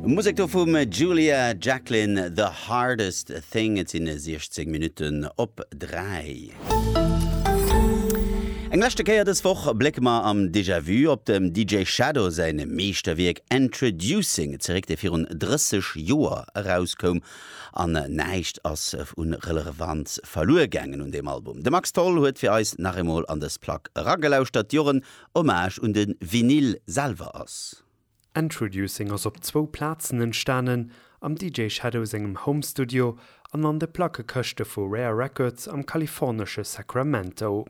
Musek do vum Julia Jacklin, The Hardest Thing. Et sinn 16 Minutten op 3. Eng leschte Kéier dës Woch blécke mer am Déjà Vu op dem DJ Shadow säi Meeschterwierk Endtroducing zeréck, dee virun 30 Joer erauskoum. An näischt ass u Relevanz verluer gaangen un deem Album. De Max Tholl huet fir eis nach eemol an dës Plack eragelauschtert, Joren Hommage un den Vinyl selwer ass. Endtroducing ass op zwou Plazen entstanen, am DJ Shadow sengem Home Studio an an de Plackekëschte vu Rare Records am kalifornesche Sacramento.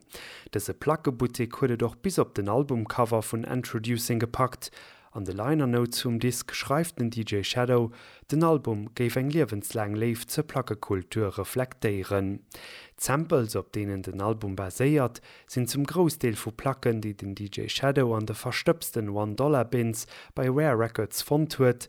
Dëse Plackebuttek huet et och bis op den Albumcover vun Endtroducing gepackt An de Liner Notes vum Disk schreift den DJ Shadow, den Album géif eng liewenslaang Léift zur Plackekultur reflektéieren. D'Samples, op deenen den Album baséiert, sinn zum Groussdeel vu Placken, déi den DJ Shadow an de verstëbsten One Dollar Bins bei Rare Records fonnt huet,